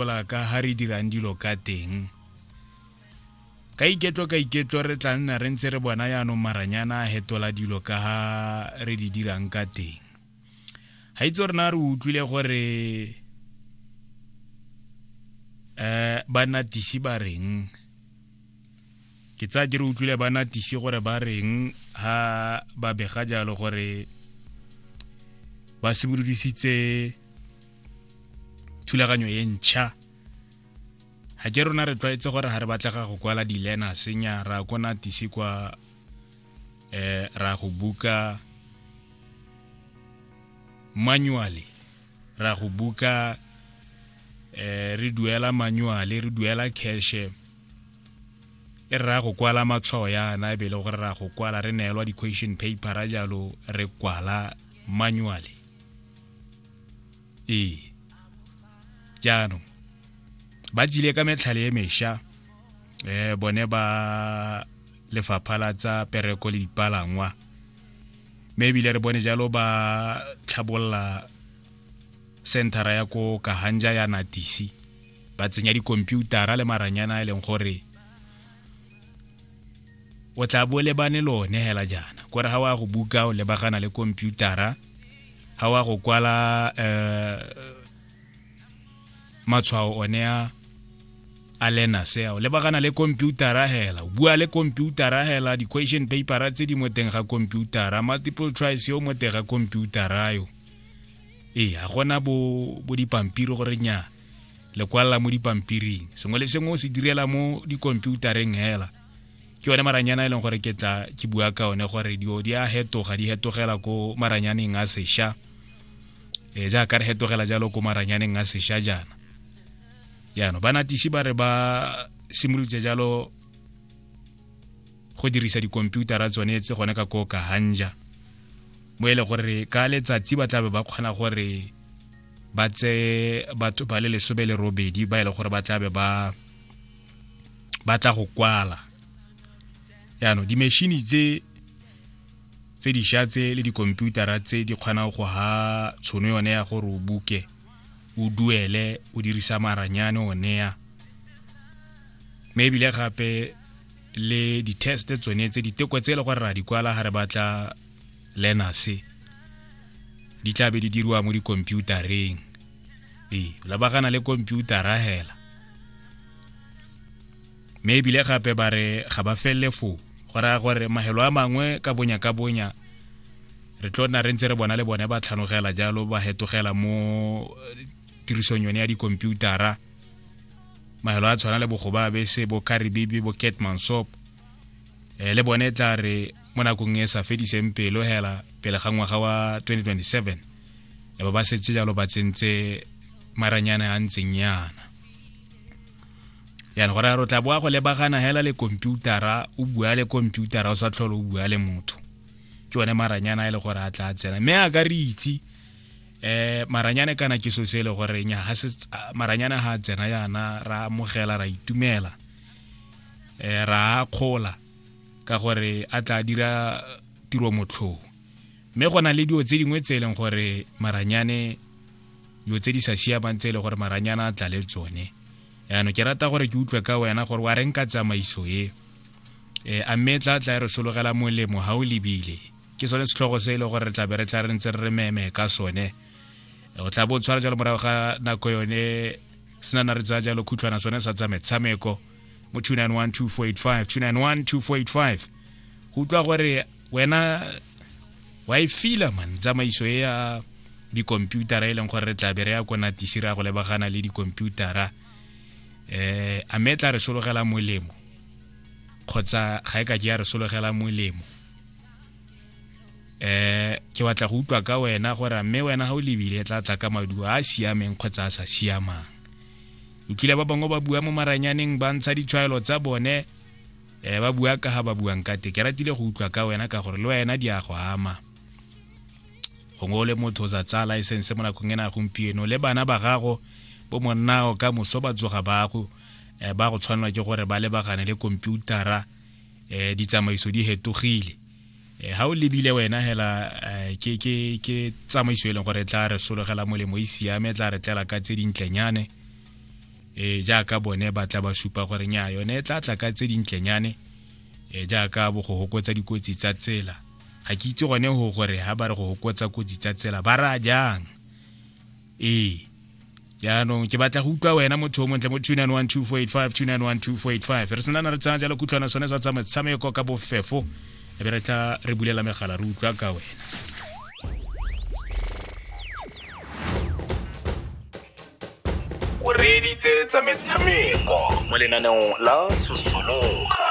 gopola ka ha re dirang dilo ka teng ka iketlo ka iketlo re tla nna re ntse re bona yaanong maranyana a hetola dilo ka ha re di dirang ka teng ga itse rena re utlwile gore um banatisi ba reng ke tsaya ke re utlwile banatisi gore ba reng ha ba bega jalo gore ba simolodisitse thulaganyo e ntšha ga ke rona re tlwaetse gore ga re batlega go kwala dilena senya ra kona tise kwa um ra go buka manually ra go buka eh re duela manually re duela cash e ra go kwala matshwao yana e bele gore ra go kwala re neelwa di-question paper jalo re kwala manually ee jaanong ba tsile ka metlhale e mesha eh bone ba lefapha la tsa pereko le dipalangwa mme ebile re bone jalo ba tlhabolola centera ya ko kahanja ya natisi ba tsenya dikomputara le maranyana e leng gore o tla bo lebane lone hela jaana kore ga wa go buka o lebagana le komputara ga wa go kwala um matshwao one a a lena seo lebagana le computera hela bua le computera hela di-question papera tse di mo teng ga computera multiple choice yo mo teng ga computera yo ee ga gona bo dipampiri gore nya lekwalla mo dipampiring sengwe le sengwe o se direla mo dikomputareng hela ke one maranyana e leng gore ke tla ke bua ka one gore dio di a hetoga di hetogela ko maranyaneng a sesha e jaaka re hetogela jalo ko maranyaneng a sesha jaana jaanong banatisi ba re ba simolotse jalo go dirisa dikomputara tsone tse gone ka ko kahanja mo e le gore ka letsatsi ba tlabe ba kgona gore ba tseye batho ba le lesome le robedi ba e le gore ba tlabe ba ba tla go kwala yaanong dimešhini tse tse dišwa tse le dikomputara tse di kgonang go ha tshono yone ya gore o buke o duele o dirisa maranyane one ya mme ebile gape le di-test tsone tse diteko tse e le gore ra di kwala ga re batla learners di tla be di diriwa mo dikhomputareng ee labagana le komputara hela mme ebile gape ba re ga ba felele foo go raya gore mahelo a mangwe ka bonya ka bonya re tlo nna re ntse re bona le bone ba tlhanogela jalo ba hetogela mo eh, tirisong yone ya dikomputara mahelo a tshwana le bogoba bese bo karibibi bo ketmansop um eh, le bone e tla re mo nakong e sa fediseng pelo hela pele ga ngwaga wa 2027 e ba ba setse jalo ba tsentse maranyana a ntseng yana yana gore o tla boa go lebagana hela le komputara o bua le komputara o sa tlhole o bua le motho ke one maranyana e le gore a tla tsena mme a ka re itse eh maranyane kana ke so se le gore nya ha se maranyane ha tsena yana ra amogela ra itumela eh ra khola ka gore a tla dira tiro motlhong mme go na le dilo tse dingwe tse e leng gore maranyane dilo tse di sa siamang tse e leng gore maranyana a tla le tsone yaanong ke rata gore ke utlwe ka wena gore wa reng ka tsamaiso e um a mme tla tla e re sologela molemo ga o lebile ke sone setlhogo se e leng gore re tlabe re tla re ntse re re meme ka sone o tla bo o tshwara jalo morago ga nako yone senana re tsaya jalo khutlhwana sone sa tsa metshameko mo 2912485 2912485 go utlwa gore wena wa e fila man tsamaiso e ya dikomputara e leng gore re tlabe re ya ko natisi re ya go lebagana le dikomputara um a me tla re sologela molemo kgotsa ga e ka ke ya re sologela molemo eh ke batla go utlwa ka wena gore mme wena ga o lebile tla tla ka maduo a a siameng kgotsa a sa siamang o kile ba bangwe ba bua mo maranyaneng ba ntsha ditshwaelo tsa bone eh ba bua ka ga ba buang ka te ke ratile go utlwa ka wena ka gore le wena di a go ama gongwe o le motho o sa tsaya license mo nakong ena gompieno le bana ba gago bo monnago ka moso ba tsoga bago eh, ba go tshwanelwa ke gore ba lebagane le komputara um ditsamaiso di hetogile Eh, ha o lebile wena hela eh, ke ke ke tsamaiso e leng gore tla re sologela molemo e siame tla re tlela ka tse dintlenyane e jaaka bone ba tla ba supa gore nya yone e tla tla ka tse dintlenyane e jaaka bo go hokotsa dikotsi tsa tsela ga ke itse gone go gore ha ba re go hokotsa kotsi tsa tsela ba ra jang ee jaanong ke batla go utlwa wena motho o montle mo 2912485 re senana re tsaya jalo kutlwana sone sa tsa metshameko ka bofefo e be re tla re bulela megala re utlwa ka wena o reeditse tsa metshameko mo lenaneong la sosologa